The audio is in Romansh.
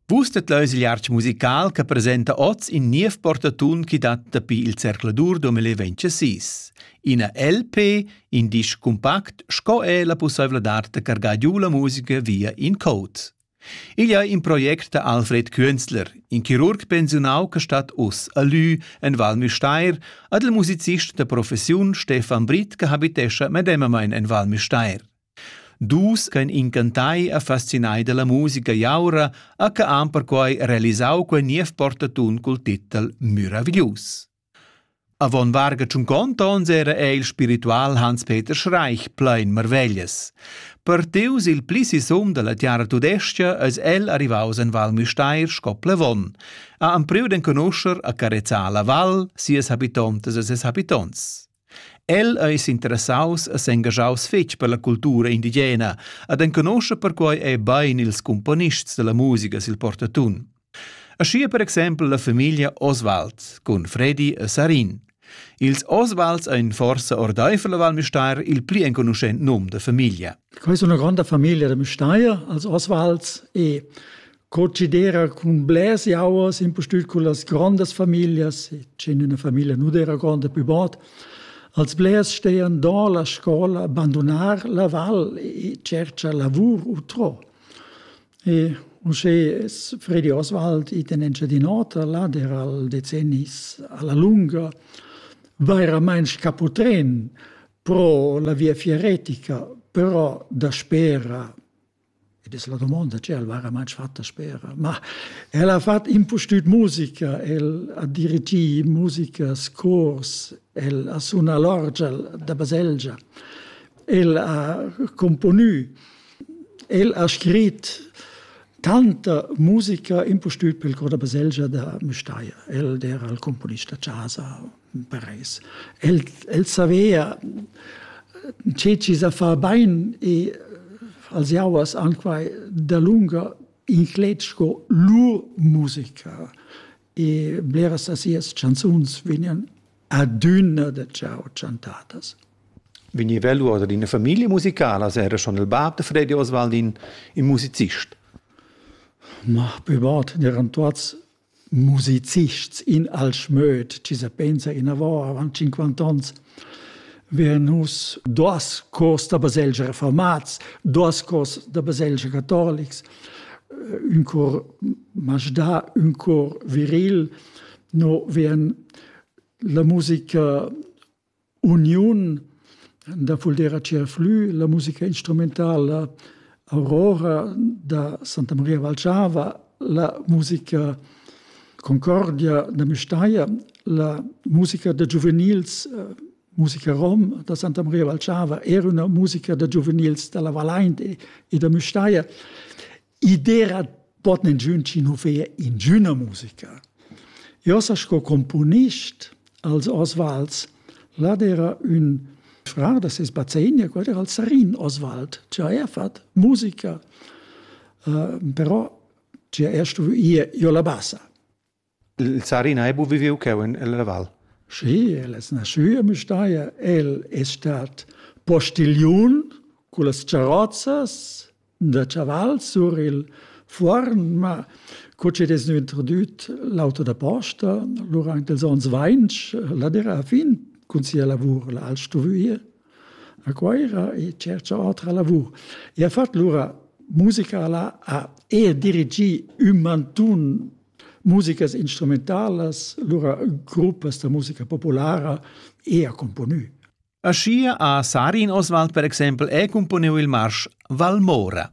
Vus det leus il artg musical che presenta oz in niev portatun chi dat dapi il zercladur 2026. Ina LP, in disc compact sco è la pussaivladad da cargar giu la musica via in code. Igl è in project da Alfred Künzler, in chirurg pensiunau che stat us a Lü en Val Müstair, ad il musicist da professiun Stefan Britt che habitescha medemamain en Val Müstair. Dus ch'ein incantai e fascinai dalla musica jaura ha que han perquei realisau quei niev portatun cul titel Meraviglius. Avon varga tschunconta onns era ei il spiritual Hans-Peter Schreich plein marveglias. Partius il pli sisum dalla tiara tudescha eis el arrivaus en Val Müstair sco plevon. Ha empriu d'enconuscher a carezzar la val, sias habitontas e ses habitonts. El ei s'interessaus e s'engaschaus fetg per la cultura indigena ed enconoscha perquei ei bein ils cumponists dalla musica sil portatun. Aschia per exempel la famiglia Oswald cun Fredi e Sarin. Ils Oswalds ein forsa ordeifer la Val Müstair il pli enconuschent num da famiglia. Quei è una grande famiglia da Müstair, als Oswalds e Co cedera cun blers jauers impustüt con las grandas familias, dschend üna famiglia nu d'eira gronda pü bod, als blers stean do la scola, bandunar la val e tscherchar lavur utrò. E uschè es Fredi Oswald it in Engiadin'Ota, là d'eira'l decennis a la lunga vairamaing scaputrän pro la via fieretica, però daspera Ed es la domonda che el vaira main fatta spera. Ma el ha fat impustüt musica, el ha dirigì musicas, cors, el ha sunà l'orgel da baselgia, el ha componü, el ha scrit tanta musica impustüt pel cor da baselgia da Müstair. El d'era il componist da chasa, Paris. El, el savea tge ci sa fa bain e als jauers anquai dalunga inclet sco lur musica e bleras da sias chanzuns vegnan adüna da ciao chantadas. Vegniva lur ad ina famiglia musicala, se era schon il bab de Freddy Oswaldin in musicist. Ma, pübart, eran tuots musicists in Alschmöd, ci se pensa inavò avant 50 ans, wir nus dos cors da baselgia reformats, dos cors da baselgia catholics, un cor Majda, un cor viril, no vien la musica uniun da Fuldera Tscherflü, la musica instrumentala Aurora da Santa Maria Valchava, la musica Concordia da Müstair, la musica da giuvenils, eh, musica rom da Santa Maria Valchava, era una musica da giuvenils dalla Vallain e da Müstair. I dera pot nengiun chi nu fea ingüna musica. Io sa sco componist als Osvalds, là era un fra da ses bazegna, quel era il Sarin Oswald, che ha er fat musica, uh, però che er stuvo ir io la bassa. Il Sarina ei buc viviu cheu en la val. Schi, el es nascü a Müstair, el es stat postigliun con las charozzas da chaval sur il fuorn, ma co chi'd es gnü introdüt l'auto da posta durant ils ons vainch, la d'eira a fin cun sia lavur, l'ha el stuvü ir a Cuoira e tschercha otra lavur e ha fat lura musica là, ha e dirigì ün mantun musicas instrumentalas, lura gruppas da musica populara e ha componü. Aschia ha Sarin Oswald per exempel è componiu il marsch Valmora.